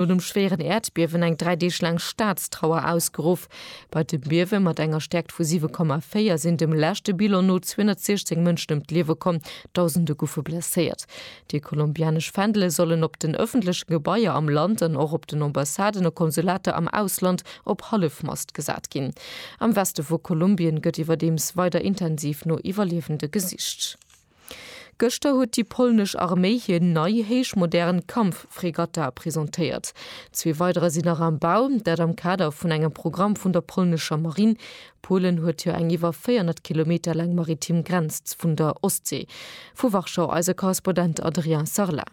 No dem schwéieren Äerdbiewen eng dräi Deeg laang Staatstrauer ausgeruff. Bei dem Biewe mat enger Stäerkt vu 7,4 sinn dem leschte Bilan no 216 Mënschen ëm d'Liewe komm, Dausende goufe blesséiert. Déi kolumbianesch Fändele sollen op den ëffentleche Gebaier am Land an och op den Ambassaden a Konsulater am Ausland op Hallefmast gesat ginn. Am Weste vu Kolumbien gëtt iwwerdeems weider intensiv no Iwwerliewende gesicht. Gëschter huet déi polnesch Arméi hir nei héichmodern Kampffregatta presentéiert. Zwee weiderer sinn nach am Bau, dat am Kader vun engem Programm vun der polnescher Marinn. Polen huet jo eng iwwer 400 Kilometer laang maritim Grenz vun der Ostsee. Vu Warschau eise Korrespondent Adrien Sarlat.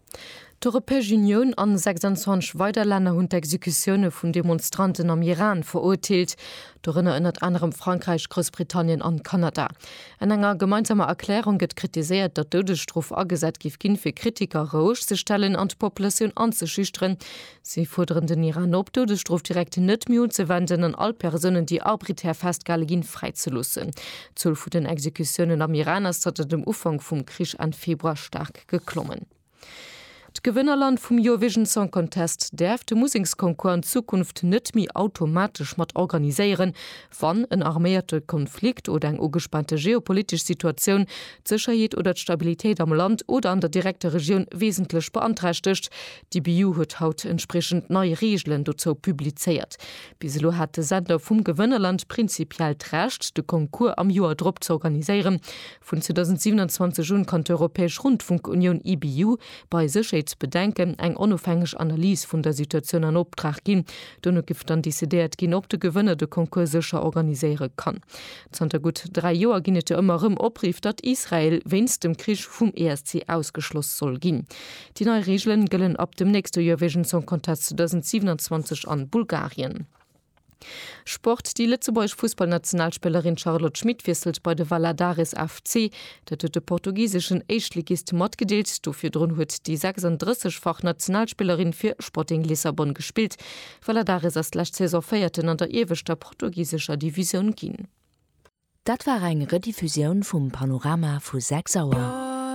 D'Europäesch Unioun a 26 weider Länner hunn d'Exekutioune vun Demonstranten am Iran verurteelt, dorënner ënnert anerem Frankräich, Groussbritannien an Kanada. An enger gemeinsamer Erklärung gëtt kritiséiert, datt d'Doudesstrof agesat giff ginn, fir Kritiker roueg ze stellen an d'Populatioun anzeschüchteren. Si fuerderen den Iran op, d'Doudesstrof direkt net méi unzewenden an all Persounen, déi arbiträer festgehale ginn, fräizeloossen. D'Zuel vun den Exekutiounen am Iran ass zanter dem Ufank vum Krich Enn Februar staark geklommen. D'Gewënnerland vum Eurovision Song Contest däerf de Museksconcours an Zukunft net méi automatesch mat organiséieren, wann en arméierte Konflikt oder eng ugespaante geopolitesch Situatioun d'Sécherheet oder d'Stabilitéit am Land oder an der direkter Regioun wesentlech beanträchtegt. D'EBU huet haut entspriechend nei Reegelen dozou publizéiert. Bis elo hat de Sender vum Gewënnerland prinzipiell d'Recht, de Concours am Joer drop z'organiséieren, Vun 2027 un kann d'Europäesch Rundfunkunioun, EBU, bei Sécherheetsbedenken eng onofhängeg Analys vun der Situatioun an Optrag ginn. Dono giff dann decidéiert ginn, ob de Gewënner de Concours sécher organiséiere kann. Zanter gutt dräi Joer ginn et jo ëmmer erëm Opriff, datt Israel wéinst dem Krich vum ESC ausgeschloss soll ginn. Déi nei Reegelen gëllen ab dem nächste Eurovision Song Contest 2027 an Bulgarien. Sport, Déi lëtzebuergesch Fussballnationalspillerin Charlotte Schmit wiesselt bei de Valadares FC. Dat huet de portugiseschen Éischtligist matgedeelt. Do virdrun huet déi 36 fach Nationalspillerin fir Sporting Lissabon gespillt. Valadares ass d'lescht Saison Véierten an der ieweschter portugisescher Divisioun ginn. Dat war eng Rediffusioun vum Panorama vu 6 Auer.